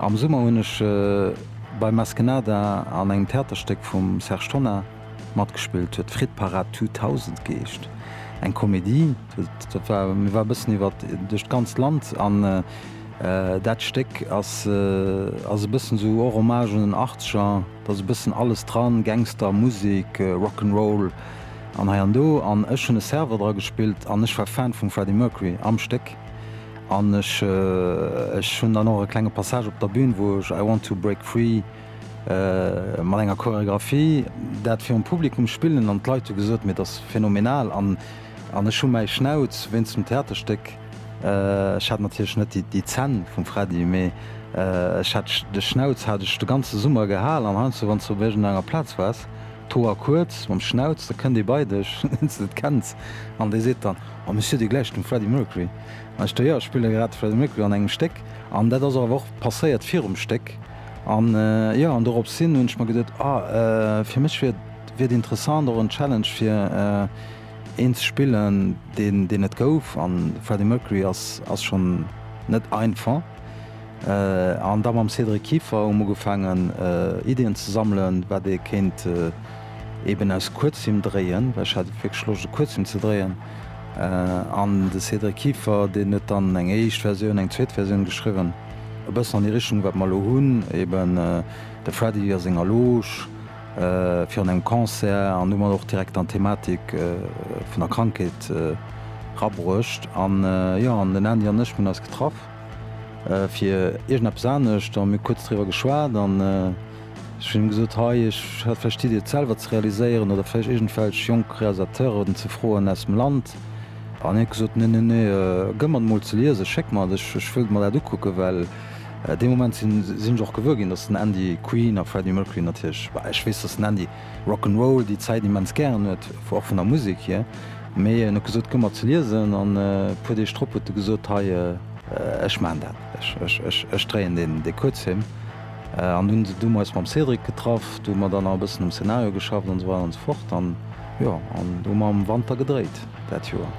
Am Summer hunn ech bei Maskenada an engem Theaterstéck vum Serge Tonnar matgespillt, huet Frittparad 2000 geescht. Eng Komedie, dat war, mir war e bëssen iwwert duerch d'ganzt Land an dat Stéck ass ass e bëssen esou och Hommage un den Achtzeger, et ass e bëssen alles dran, Gangster, Musek, Rock 'n' Roll an hei an do an ech hunn e Server dra gespillt an ech war Fan vum Freddie Mercury am Stéck An ech hunn dann och e klenge Passage op der Bün, wou ech I Want to Break Free mat enger Choreographie dat virum Publikum spillen. An d'Leit hu gesot, mee dat ass phenomenal. An ech hu mäi Schnauz wéinst dem Theaterstéck, ech hat natierlech net déi Zänn vum Freddy, mee ech hat de Schnauz hat ech de ganze Summer gehal. An heiansdo wann s de op iergendenger Plaz waars, d'Hoer kuerz, mam Schnauz, da kënnt ee bei dech, deen s de net kenns, an dee seet dann, Oh, mir si jo déi gläich, dem Freddy Mercury. Ech do, jo, ech spillen grad Freddie Mercury an engem Stéck an dat ass awer och passéiert virum Stéck an jo, an dorops hin hunn ech mer geduet, ah, fir mech wier et interessant, och en Challenge fir een ze spillen, deen deen net gouf an Freddie Mercury ass ass schonn net einfach an da mam Cédric Kieffer hu mer ugefaangen Iddien ze sammelen, wat ee kéint eeben aus Kuerzfilm dréien, well ech hat wierklech Loscht e Kuerzfilm ze dréien. An de Cédric Kieffer, deen huet dann eng éischt Versioun, eng zweet Versioun geschriwwen, e bëssen an déi Richtung, wat mer elo hunn, eben de Freddy a senger Loge virun engem Concert an hu mer och direkt an d'Thematik vun der Krankheet rabruecht. An jo, an den Andy an ech, mir hunn eis getraff fir iergendeppes anescht, da hu mir kuerz driwwer geschwat an. Ech hunn him gesot, Hei, ech hätt vläicht d'Iddi, et selwer ze realiséieren oder vläicht iergendwelch jonk Realisateuren ze froen aus dem Land. An hien huet gesot, Nee, nee, nee, gëff mer et emol ze liesen, schéck mer et, ech wëll mer dat ukucken. Well dee Moment sinn ech och gewuer ginn, datt den Andy Queen a Freddie Mercury natierlech, bah, ech weess, datt den Andy Rock 'n' Roll, déi Zäit, immens gären huet, och vun der Musek hier. Mee en huet gesot, Gëff mer et ze liesen. An e puer Deeg drop huet e gesot, Hei, ech maachen dat, ech dréien dee Kuerzfilm. An dunn sinn du mer eis mam Cédric getraff, do hu mer dann nach e bëssen um Szenario geschafft an esou weider an esou fort. An jo, an do hu mer am Wanter gedréit dat Joer.